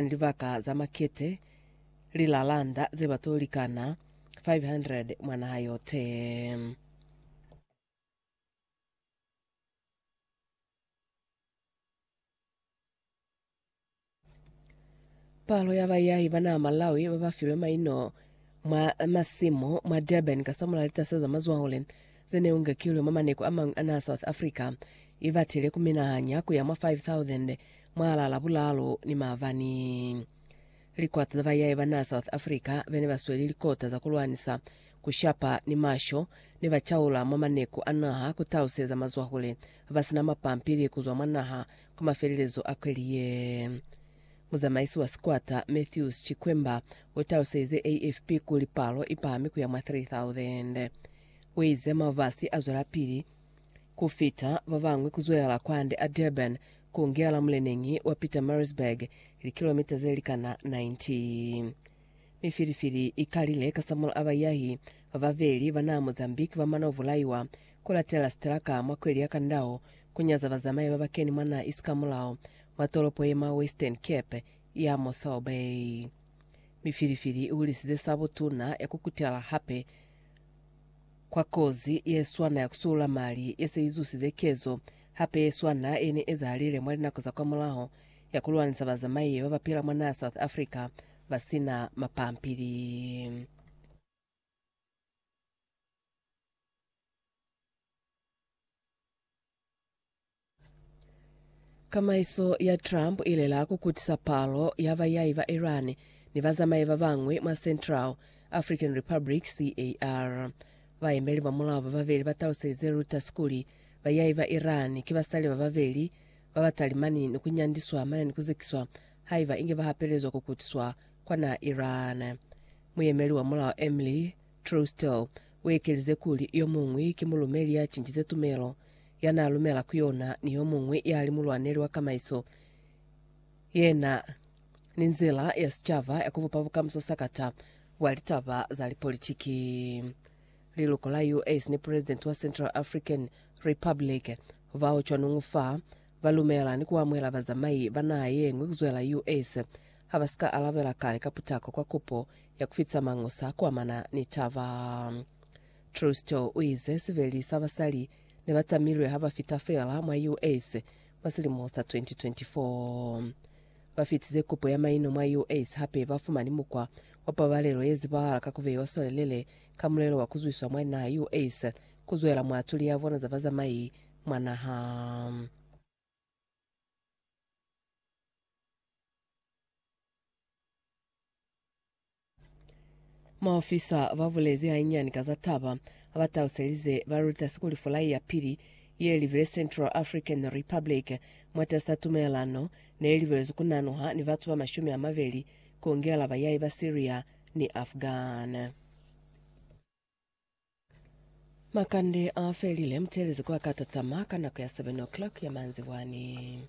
ni libaka za makete, lilalanda ze ba to likana 500 mwa naha yote. Palo ya bayahi ba naha Malawi ba ba filwe maino mwa masimu mwa Durban ka samula litasa za mazwahule ze ne ungekilwe mwa maneko a mañwi a naha South Africa, i batile ku minahanya ku ya mwa 5,000 Mwalaa Labulalu ni maabani, likota za bayaye ba naa South Africa bene ba sweli likota za kulwanisa ku shapa ni masho ne ba caula mwa maneku a naha ku taluseza mazwahule ba sina mapampili ku zwa mwa naha kwa mafelelezo a kweli ye. Muzamaisi wa sikwata Matthews Chikwemba u taluselize AFP kuli palo i pahami ku ya mwa 3,000. U ize mabasi a zwelapili ku fita ba bañwi ku zwelela kwande a Durban ku ngela muleneñi wa Pietermaritzburg, likilomita ze likana 90. Mifilifili i kalile kasamulaho a baiyahi ba babeli ba naa Mozambique ba mana ku bulaiwa ku latelela sitelaka mwa kweli ya kandao ku nyaza bazamai ba ba keni mwa naa isi kamulaho mwa tolopo ye mwa Western Cape ya Mossel Bay. Mifilifili i hulisize sabotuna ya ku kutela hape Kwa kozi ye swana ya ku suula mali ye se i zusize kezo hape ye swana ye ne ezahalile mwa linako za kwamulaho ya ku lwanisa bazamaiye ba ba pila mwa naha South Africa ba si na mapampili. Kamaiso ya Trump i lela ku kutisa palo ya bayahi ba Iran ni bazamai ba bañwi mwa Central African Republic, CAR. Baemeli ba mulao ba babeli ba taluselize Reuters kuli, Bayahi ba Iran ki basali ba babeli ba ba talimani ni ku nyandiswa mane ni ku zekiswa haiba inge ba hapelezwa ku kutiswa kwa naha Iran. Muyemeli wa mulao Emily Trousdale u ekelize kuli, Yo muñwi ki mulumeli ya cincize tumelo ya n'a lumela ku yona, ni yo muñwi ya li mulwaneli wa kamaiso ye na ni nzila ya sicaba ya ku bupa bukamuso sakata bwa litaba za lipolitiki. Liluko la US ni Pulezidenti wa Central African Republic bao cwanuñu fa ba lumela ni ku amuhela bazamai ba naha ye ñwi ku zwela US ha ba si ka alabela kale ka putako kwa kupo ya ku fitisa mañusa ku amana ni taba. Truesdell u ize siveli sa basali ne ba tamilwe ha ba fita feela mwa US mwa silimo sa 2024. Ba fitize kupo ya maino mwa US hape ba fumani mukwa wa pabalelo ye zibahala ka ku beiwa swalelele ka mulelo wa ku zwiswa mwa naha US ku zwela mwa tuli ya bona za bazamai mwa naha. Maofisa ba bulezi hanyinyani ka za taba, ha ba taluselize balutasi kuli fulai ya pili ye libile Central African Republic mwatas'a tumelelano ne libelezwe ku nanuha ni batu ba mashumi a mabeli ku ngela bayai ba Syria ni Afghan. Makande a felile, mutelezi kwa ka tatama ka nako ya 7 o'clock ya manzibwani.